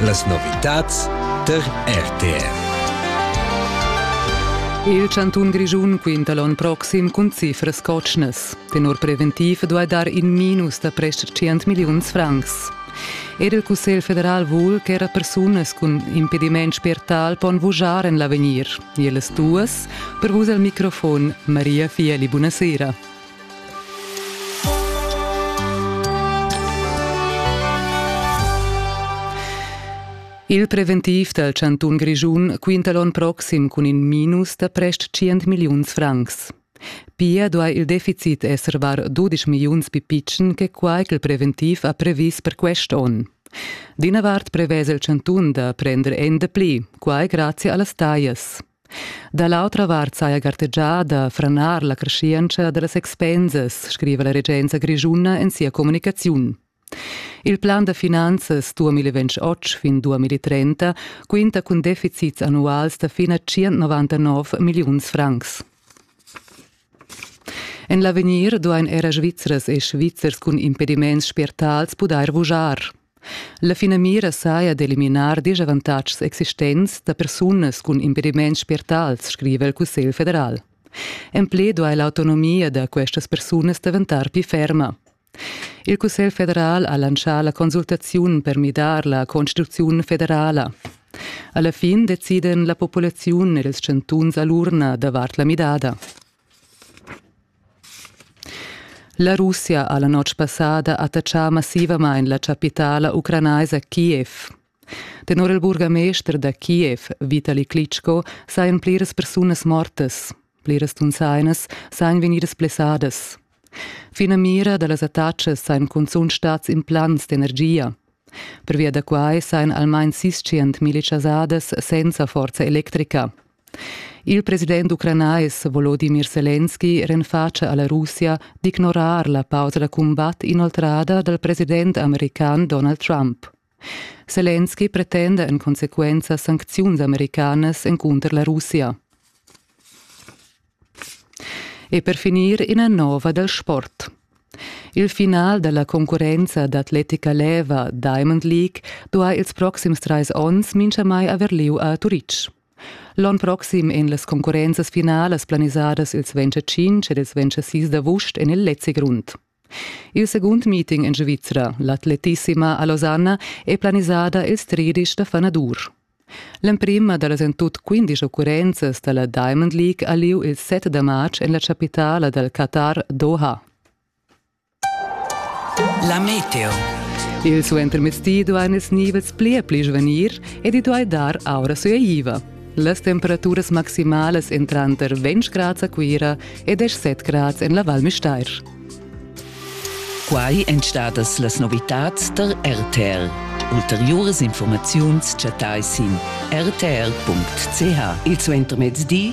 Las novitads tar RTR. Il chantun Grischun quinta l'onn proxim cun cifras cotschnas. Tenor preventiv duai dar in minus da prest 100 milliuns francs. Er il Cussegl federal vul ch'era persunas cun impediment spiertal pon vujar en l'avegnir. Ellas duas, per vus al microfon Maria Fieli, buonasera. Il preventiv dal chantun Grischun quinta l'on proxim cun in minus da prest 100 milliuns francs. Pia duai il deficit esser var 12 milliuns pipitschen che quai ch'il preventiv ha previs per quest onn. D'ina vart prevesa il chantun da prender ende pli, quai grazie a las taglias. Da l'autra vart saja gartegià da franar la creschientscha da las expensas, scriva la regenza grischuna en sia communicaziun. Il plan da finanzas 2028 fin 2030 quinta cun deficits annuals da fin a 199 milliuns francs. En l'avegnir duain era Svizras e Svizzers cun impediments spiertals pudair vujar. La finamira saja d'eliminar disavantatgs existents da persunas cun impediments spiertals, scriva il Cussegl federal. En pli duai l'autonomia da questas persunas daventar pli ferma. Il Cussegl federal ha lancià la consultaziun per midar la constituziun federala. Alla fin deciden la populaziun ed ils chantuns a l'urna davart la midada. La Russia ha la notg passada attachà massivamain la chapitala ucranaisa Kiev. Tenor il burgamester da Kiev, Vitali Klitschko, sajan pliras persunas mortas. Pliras tunsainas sajan vegnidas blessadas. Finamira da las attacas sajan cunzunt stads implants d'energia. Pervia da quai sajan almain sis tschient milli chasadas senza forza electrica. Il president ucranais Volodimir Selenski renfatscha a la Russia d'ignorar la pausa da cumbat inoltrada dal president american Donald Trump. Selenski pretenda en consequenza sancziuns americanas encunter la Russia. E per finir ina nova dal sport. Il final della concurrenza d'atletica leva Diamond League duai ils proxims trais onns mincha mai aver lieu a Turitg. L'onn proxim ein las concurrenzas finalas planisadas ils 25 ed ils 26 d'avust en il Lezi Grund. Il secund meeting en Svizra, l'atletissima a Losanna, è planisada ils tredici da fanadur. L'emprima da las en tut 15 occurrenzas da la Diamond League ha lieu il 7 da marz en la chapitala dal Qatar Doha. La meteo. Il suentermezdi duain ils nivels pli e pli svanir ed i duai dar aura sueiva. Las temperaturas maximalas en tranter 20 grads a Cuira e 17 grads en la Val Müstair. Quai èn stadas las novitads der RTL. Ulteriuras informaziuns chattai sin rtl.ch. Il suentermezdi